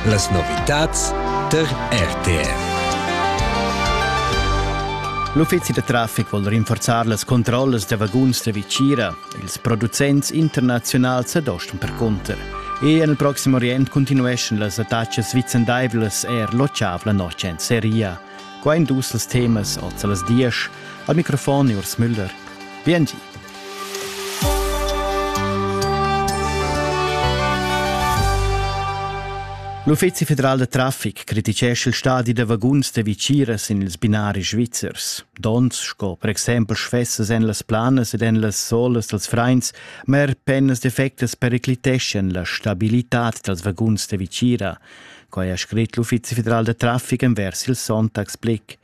Las novitads tar RTR. L'uffizi da traffic vul rinforzar las controllas da vaguns da Vicira. Ils producents internaziunals adostan percunter. E en il proxim orient continueschan las attacas vicendaivlas er l'otg la notg en Seria. Qua ein dus els temas ord las diesch. Al microfon Urs Müller. Biengi. L'Uffizi federal da traffic criticescha il stadi da vaguns da viciras in ils binari svizzers. Dons sco per exempel sfessas en las planas ed en las solas dels freins, ma er pennas defectas pericliteschan la stabilitad dals vaguns da vicira. Quai ha scrit l'Uffizi federal da traffic envers il Sonntagsblick.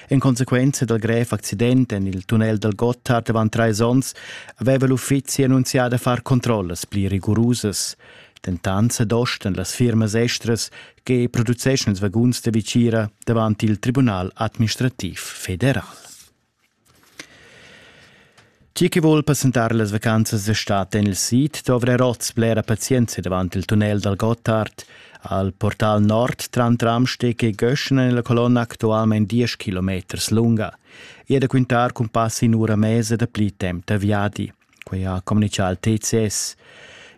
En consequenza dal grev accident en il tunnel dal Gotthard avant trais onns aveva l'uffizi annunzià da far controllas pli rigurusas. Dentant s'adostan las firmas estras che produceschan ils vaguns da vicira davant il Tribunal administrativ federal. Chi chi voul passentar las vacanzas a stat en il sid dovra oz blera pazienza davant il tunnel dal Gottard. Al portal nord tran tramsteg e göschen en la colonna actualmain 10 km lunga. E da quintar cun pass in ura mesa da pli temp da viadi. Quai ha communichà il TCS.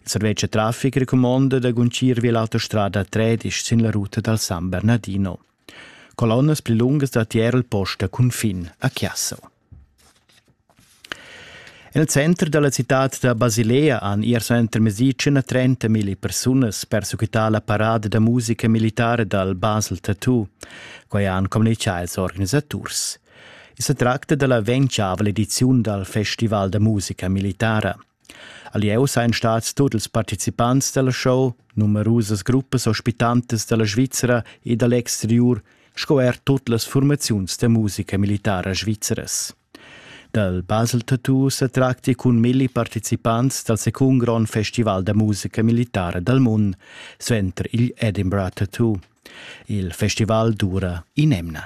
Il servetsch da traffic recumonda da guncir via l'autostrada 13 sin la ruta dal San Bernardino. Colonnas pli lungas da tier il post da cunfin a Chiasso. En il center dalla citad da Basilea han ier suenter mesi 130 mila persunas persequità la parada da musica militare dal Basel Tattoo. Quai han communichà ils organisaturs. I sa tracta dalla ventiavel ediziun dal Festival da musica militara. A Lieu sajan stats tut ils participants da la show, numerusas gruppas ospitantas da la Svizra e da l'exteriur sco er tut las furmaziuns da musica militara svizras. Dal Basel Tattoo sa tracti cun milli participants dal secund grond festival da musica militara dal mund, suenter il Edinburgh Tattoo. Il festival dura in'emna.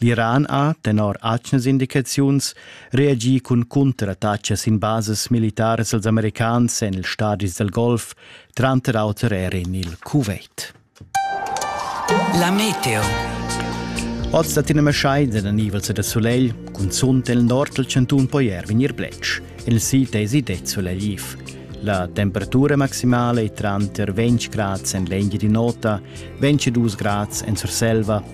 L'Iran ha, tenor atgnas indicaziuns, reagì cun cunterattachas sin basas militaras als americans en ils stadis dal Golf, tranter auter er en il Kuwait. La meteo. Oz dat in maschai da nivels da sulegl, cunzunt nel nord del cantun poi er vegnir bletsch. Il sid esi det sulegliv. La temperatura maximale è tranter 20 grad en l'engi di nota, 22 grad en Surselva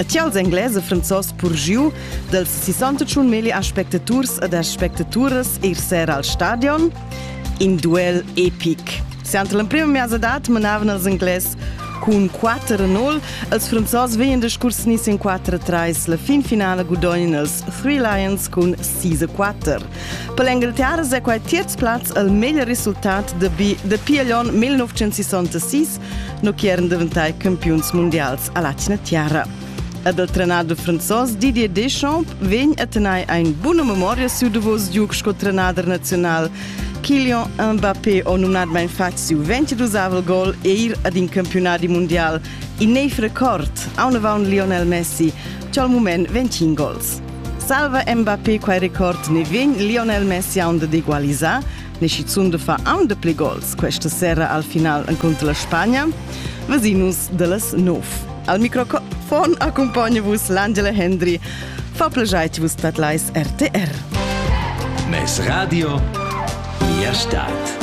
E tials Engles e Franzos purgiu dels 61 meli aspectaturs ed aspectaturas ir ser al stadion? In duel epic. Siant l'emprima miasa dat manavan els Engles cun 4-0. Els franzos veien discurs nis in 4-3. La fin finala gudognien els Three Lions cun 6-4. Per l'Engaltiara è quai terz plaz al meglio risultat de B de Piglion 1966 no chi eran daventai campiuns mundials a Latina Tiara. Ed il trenador franzos Didier Deschamps vegn a tenere eine buona memoria su Davos Duke sco trenader nazional. Kylian Mbappé ho nominat mai infatti siu 22 gol e ir ad in campionati mondial. In neiv record, aunavant Lionel Messi, che al moment 25 gols. Salva Mbappé quai record ne vegn Lionel Messi aunde d'egualisar, ni schizunt da far aun de pli gols questa sera al final encunter la Spagna, vesinus de las nov. Al microfon accompagna vus l'Angela Hendry. Fa plajate vus patlais RTR. Mes radio, mia stad.